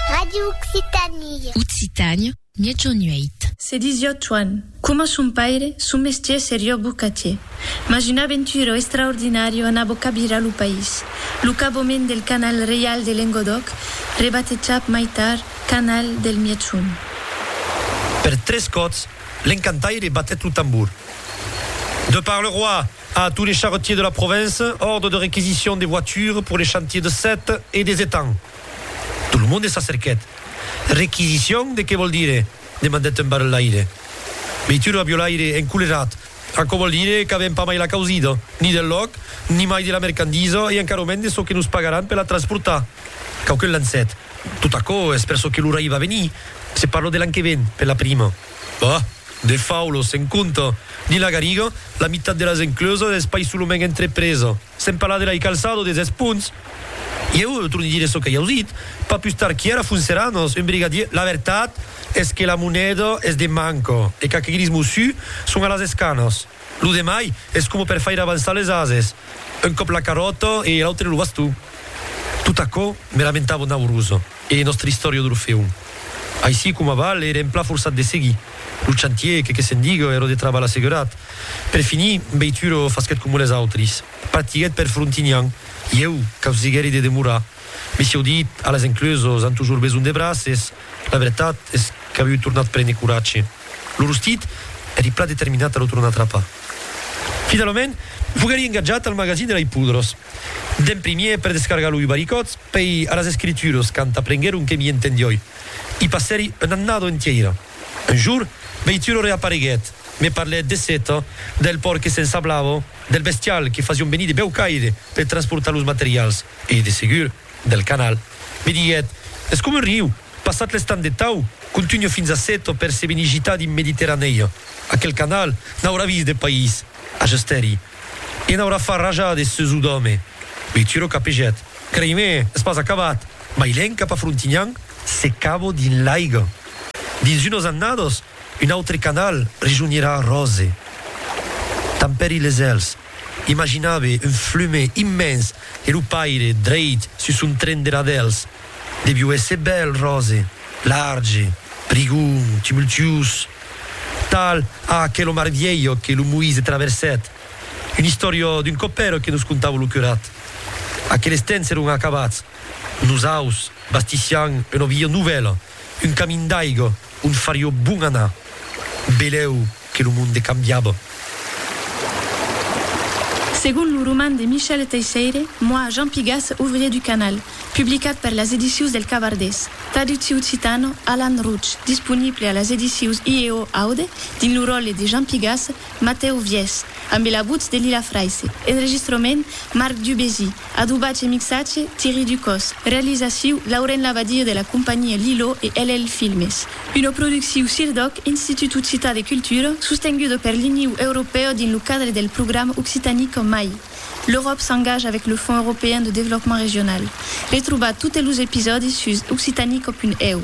Radio Occitanie. Occitània, Miègjorn 8. Se disió Tuan. Coma son paire, son mestier serió bocatier. Mas una aventura extraordinària anabó cabirar lo país, lo caboment del Canal Reial de Lengodòc, rebatejat mai tard Canal del Miègjorn. Per tres còps, l'encantaire batèt lo tambor. De par le roi! A tous les charretiers de la province, ordre de réquisition des voitures pour les chantiers de Sète et des Étangs. Tout le monde s'acerquèt. Réquisition de qué vòl dire? demandèt un barrelaire. Veitu lo aviolaire, encolerat, aquò vòl dire qu'avèm pas mai la causida, ni del lòc, ni mai de la mercandisa e encara mens de çò que nos pagaràn per la transportar. Quauqu'un lancèt, Tot aquò es per çò que l'ora i va venir, se parlo de l'an que ven, per la prima. Bah! De faulos, se'n compta. Dins la Gariga, la mitat de las encleuses es pas solament entrepresa. Se'n parla de la Icalçado des Espunts. Ieu torni dire çò que ieu dit. Pas pus tard quièra Funceranos, un brigadier, La vertat es que la moneda es de manca e qu'aqueguiris mossu son a las escanas. Lo demai es coma per faire avançar les ases, un còp la carròta e l'autre lo baston. Tot aquò me lamentava Naurusa. E nòstre istòria d'Orfèu. Aicí coma val, ère en plan forçat de seguir. Lo chantier, que que se'n digue, ère de trabalh assegurat. Per finir, Beituro fasquèt coma les autris. Partiguèt per Frontignan. Ieu, que'us diguèri de demorar. Mès ieu dit, a les enclusos an tujor besonh de braces. La vertat es qu'aviu tornat prene coratge. Lo rostit, èri plan determinat a lo tornar trapar. Finalament, foguèri engatjat al magazin de Laipoudros. D'en primier, per descargar lo Ubaricòd, pei a las escrituras, quand aprenguèron que m'i entendioi, i passèri una annada entièira. Un jour, Beituro reapareguèt, me parlèt de Seta, del pòrt que s'ensablava, del bestial que fasión venir de Bèucaire per transportar los materials e, de segur, del canal. Me diguèt, Es coma un riu, passat l'estam de Tau, contunha fins a Seta per se venir gitar dins Mediterranèia. Aquel canal n'aurà vist de país! Ajustèri. E n'aurà far rajar de seus o d'òme. Bituro capegèt. Creimè, es pas acabat! Bailèn cap a Frontinhan, se cabo dins l'aiga. Dins unas annadas, un autre canal rejonhirà Ròse. Tampèri les èls. Imaginabe un flume immens e lo paire dreit sus son tren de radèls. Deviu èsser bèl, ròse, large, prigon, tumultuós, tal a aquelo mar vielho que lo Moïse traversèt, un istoriò d'un copèro que nos contava lo curat. Aqueles temps èron acabats, nosaus bastissián una via novèla, un camin d'aiga. On farió bon anar. Belèu que lo monde cambiaba. Segon lo roman de Michel Teisseire, Moi, Jean Pigas, ouvrier du canal, publicat per las edicius del Cabardés, traductiu occitano, Alan Rouch, disponible a las edicius IEO Aude, dins lo ròle de Jean Pigas, Matèu Viès, ambe la votz de Lila Fraisse, enregistrament, Marc Dubésy, Adobatge e mixatge, Thierry Ducos. Realizaciu, Lauren Labadie de la companhia Lilo e LL Filmes. Una producciu CIRDOC, Institut Occitan de Cultura, sostenguda per l'Iniu Europèu dins lo cadre del programa Occitanique en mai. L'Euròp s'engage avec le Fonds Européen de Développement Régional. Retrobatz totes los episòdis sus occitanique.eu.